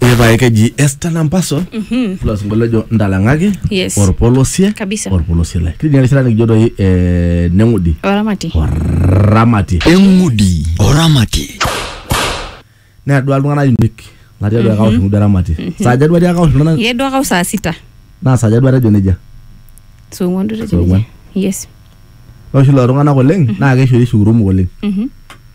epae keji Esther Lampaso ilo sinkolio ojo ntalang'aki Yes. orpolosie Kabisa. orpolosie lai kitii erishata nikijo doi eh, neng'udi oramati oramati eng'udi oramati neadua iltung'anak uniek natii atua akaunti ng'udi oramati saaja duo atii akaunti iltung'anak ye duo akau saa sita naa saaja duo atejo nejia song'uan duo Song'uan. tejo yes ore oshi lelo tung'anak oleng naa keishori shukurumuk oleng Mhm.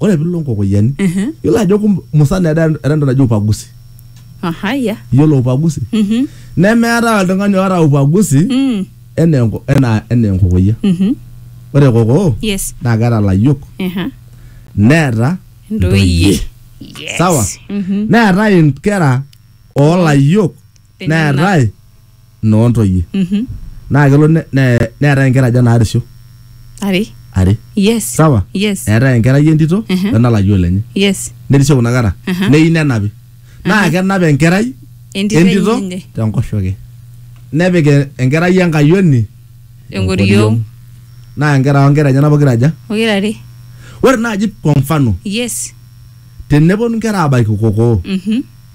ore pilo nkokoyiani Mhm. yiolo ajo kum- musana era era entoki naji upagusi Aha, ya. yiolo upagusi Mhm. nemeetae oltung'ani oota upagusi Mm. enaa enko- enaa enaa enkokoyia Mhm. ore kokoo Yes. naa keeta layiok Aha. neeta Ntoyie. Yes. Sawa. Mhm. neetae inkera oolayiok Enyenak. neetae noo ntoyie Mhm. naa kelo ne- ne- neetae inkera aja naarisho Are. are Yes. sawa Yes. eetae enkerai entito Mhm. wenalayioo lenye Yes. nerisho kuna kera Aha. neyieu nenapi naa kenap enkerai Entito entito enye. tenkoshoke nepik e- enkerai enkayioni Enkoriong. naa nkera onkera enyena pokira aja Pokira are. ore naaji kwa mfano Yes. teneponu nkera abaiki kokoo Mhm.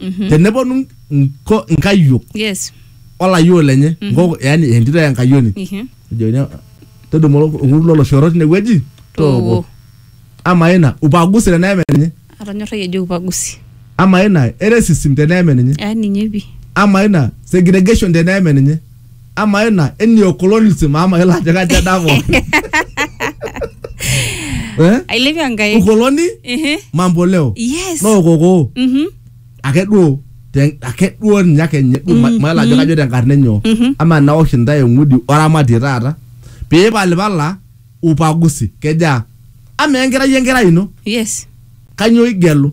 Mhm. teneponu nko- nkayiok yes olayiok lenye Mhm. nkoko yani entito ya nkayioni Mhm. ejokini todumu orkut loloshoro tinewueji Tooko. ama ina upagusi teneeme ninye atonyorrayie ejo upagusi ama ina eresism teneeme ninye ah ninye pi ama ina segregation teneeme ninye ama ena eni okolonism ama ela ajo kaja dako eh ailepie enkai ukoloni Ehe. mambo leo yes no koko Mhm. ake duo te- ake duo ninye ake nye duo ma- mayiolo ajo kajo tenkarna enyo Mhm. ama naosh intae eng'udi oramatie taata piipalipala upagusi kejaa ama enkerai enkerai ino yes kanyoo igelu